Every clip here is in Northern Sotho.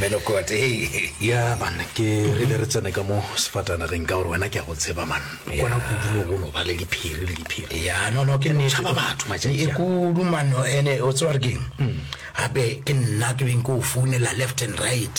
melokote ya man ke re be re tsene ka mo sefatanageng ka gore wena ke ya go tseba man kona kudumo go no ba le diphiri le diphiri ya nono ke nešaba batho matšatši e kudu mano ene o tseba re keng gape ke nna ke beng ke o founela left and right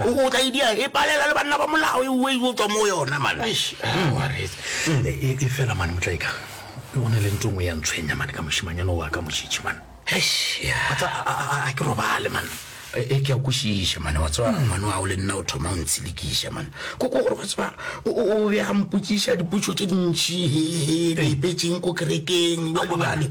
O tla e dia e palela le banna ba molao e uwe yo tswa mo yona man. Eish, ah, wa re e e fela man motla eka. Ke gone le ntongwe ya ntshwenya man ka moshimanyana wa ka moshitshi man. Eish, ya. Batla a ke robale man. E ke a kwishiša man wa tswa man wa o le nna o thoma o ntshilikiša man. Ko ko gore wa tswa o be a mpotsiša dipotšo tše dintši he he re ipetseng ko kerekeng. Wa lebale.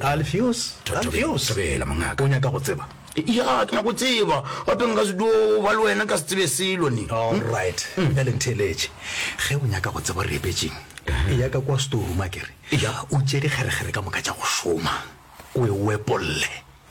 Alfios, Alfios, sebela, mongaka, o nyaka go tseba? Ya, ke nyaka go tseba, gape nka se dio ba le wena ka se tsebe selo ni. All right, bjale ntheeletše. Ge o nyaka go tseba gore re epetšeng, e ya ka kwa storeroom a kere, o tšee dikgerekgere ka moka tša go šoma, o e wepolle.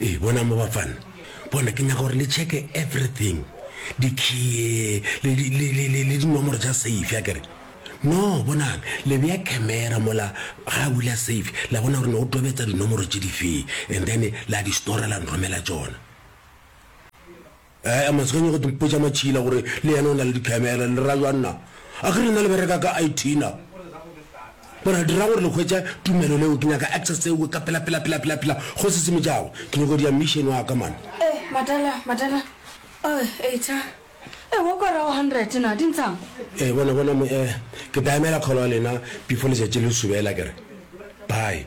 Ee, bona mo bafana. Bona, ke nyaka gore le checke everything. Dikhiye, le, le, le, le, le, le dinomoro tša safe, ya kere. No, bonang, le beya camera mola, ga bula safe, la bona gore ne o tobetsa dinomoro tše difee, and then la di stora la nromela tšona. Ee, a matsganye go mpotša matšhila gore le yena o na le dikhamera. Le ra jwang na? A ke rena le bereka ka IT na? Bona, dirang gore le hwetša tumelo leo. Ke nyaka access tseo ka pela, pela, pela, pela, pela, go se semetšago. Ke nyoko dia mission wa ka, man. Ee, madala, madala. Ee, eitha. Ee, wa kwa rago hundred na, di ntshang? Ee, bona, bona, mo, ee, ke tla emela kgolo ya lena before letšatši le subela, ke re. Bye.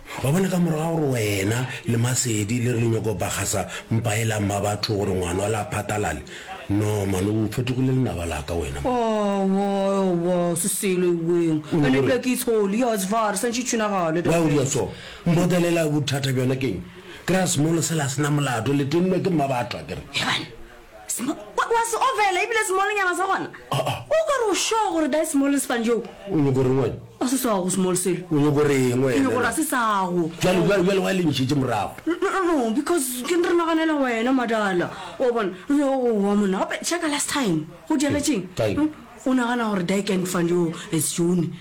Wa bona, ka morago ga gore wena le Masedi le re le nyoko bagasa mpa e la mma batho gore ngwana wa la phatalale, no man o fetogile lenaba la ka wena man. Aowa, aowa, se selo eweng. O Ene ebile ke itsholi, ya zvar, sa ntši tšhunagale. Why o dira so? Mbotelela bothata bjona keng? Kry-a small sela se na molato, le tennwe ke mma batho akere. Hebanna! wa se ofela ebile semolonyana sa gona o ka re o sure gore da small sefane joo o nyoko reng wena a se sago small selo o nyoko reng wena ke gore a se sago jalo jalo jalo wa lentšitše morago no because ke re naganela wena madala o bona o wa monna gape checka last time go diagetseng hmm? o nagana gore da can fund yo is june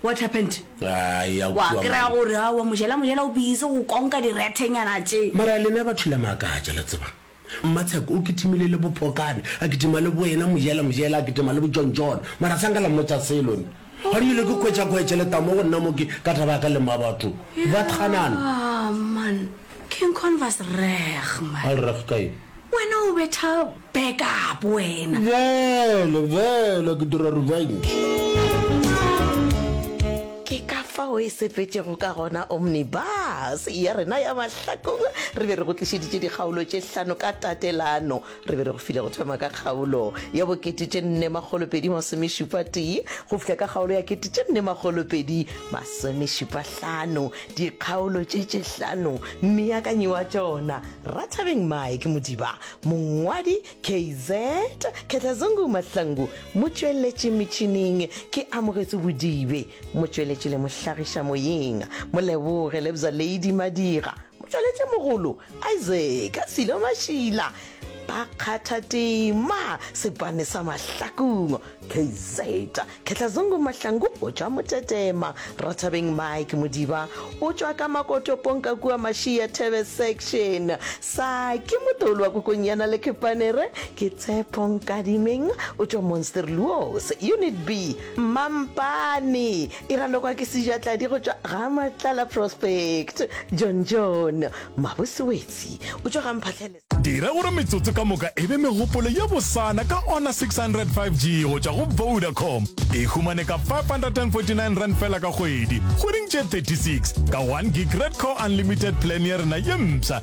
what happened wa kry-a gore a wa mojela mojela o busy go konka direthenyana tše mara lena batho la maakatša la tsebang Mmatsheko o kitimile le Bopokane, a kitima le Boena, Mojela, Mojela a kitima le Bojontjone. Mara sa nka la mmotša selo nna. Ga di ile ke kwetša kwe tšeleta mo go nna mo ke ka taba ya ka le mma batho. Ba tganana. Ah, man. King Con was reg, man. A le reg ka eng? Wena o betha back up, wena. Bjale, bjale ke dira revenge. Ke ka fao e sepetšego ka gona omnibus ya rena ya Hlakola, re be re go tlišeditše dikgaolo tše hlano ka tatelano. Re be re go file go thoma ka kgaolo ya bo kete tše nne makgolo pedi masomešupa tee go fihla ka kgaolo ya kete tše nne makgolo pedi masomešupa hlano, dikgaolo tše tše hlano. Mmeakanyi wa tšona, Rathabeng Mike Modiba. Mongwadi, KZ Khetlazungu Mahlangu. Motšweletši metšhining ke Amogetso Bodibe. Motšweletši le mohlagiša moyeng Moleboge Lebza Lady Madira, motšweletši mogolo Isaac Silo Mashila ba kgatha tema Sepane sa Mahlakung, KZ, Khetlazungu Mahlangu o tšwa Motetema, Rathabeng Mike Modiba o tšwa ka Makotopong ka kua Mashia Thebe Section, Saki Motolwa Kokonyana le Kepanere ke Tshepo Nkadimeng o tšwa Monsterluos Unit B, Mampane e ralokwa ke sejatladi go tšwa ga Matlala Prospect. John John Mabose Wetsi o tšwa ga Mphahlele. Dira gore metsotso ka moka e be megopolo ye bosana ka ona 600 5G go tšwa go Vodacom. E humane ka R549 fela ka kgwedi, kgweding tše 36, ka one gig Red Core Unlimited plan ya rena ye mpsha.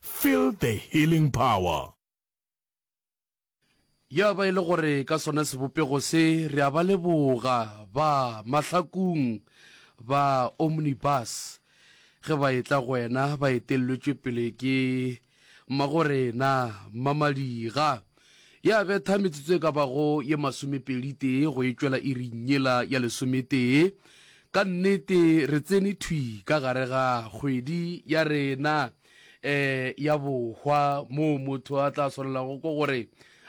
Feel the healing power. Ya ba e le gore ka sona sebopego se re a ba leboga ba mahlakung ba Omnibus ge ba etla go wena ba etelletšwe pele ke Mmagorena Mmamadiga. Ya betha metsotso e ka bago ye masomepedi-tee go e tšwela iring yela ya lesometee. Ka nnete re tsene thwi ka gare ga kgwedi ya rena. eh ya bohwa moo motho a tla swanelago ko gore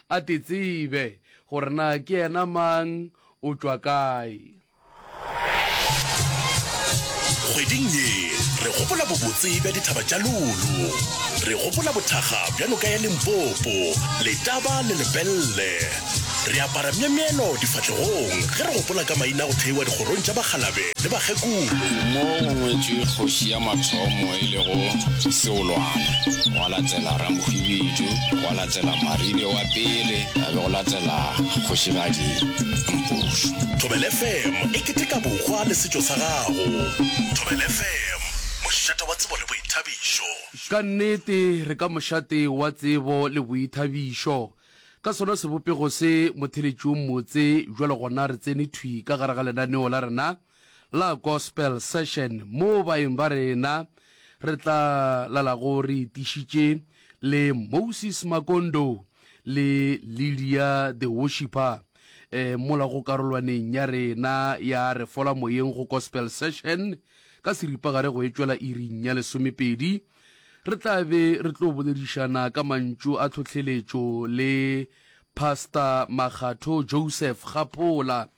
a tetsebe gore na ke yena mang o tšwa kae kgweding ye re gopola bobotse bja dithaba tša lolo re gopola bothakga bja noka ya limpopo letaba le lepelle Re apara myemyelo difahlegong ge re gopola ka maina a go theiwa dikgorong tša bakgalabe le bakgekolo. Mo go ngwetšwe kgoši ya mathomo e lego Seolwana, gwa latela Ramohwibidu, gwa latela Maribe wa pele, ga be go latela Kgošigadi Mpofu. Thobela FM e keteka bohwa le setšo sa gago. Thobela FM, mošate wa tsebo le boithabišo. Ka nnete, re ka mošate wa tsebo le boithabišo. Ka sona sebopego se, motheletši o mmotse, bjale gona re tsene thwi ka gare ga lenaneo la rena la Gospel Session, moo baeng ba rena re tla lalago re itišitše le Moses Makondo le Lydia the Worshipper eh, mola go karolwaneng ya rena ya Re Fola Moyeng go Gospel Session ka seripagare go etšwela iring ya lesomepedi. Re tla be re tlo boledišana ka mantšu a tlhohleletšo le Pastor Makgatho Joseph Kgaphola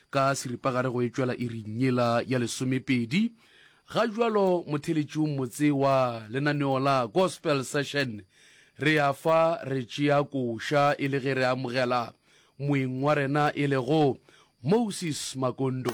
ka seripagare go etšwela iring yela ya lesomepedi. Ga jwalo motheletšiong motse wa lenaneo la Gospel Session re a fa re tšea koša e le ge re amogela moeng wa rena e lego Moses Makondo.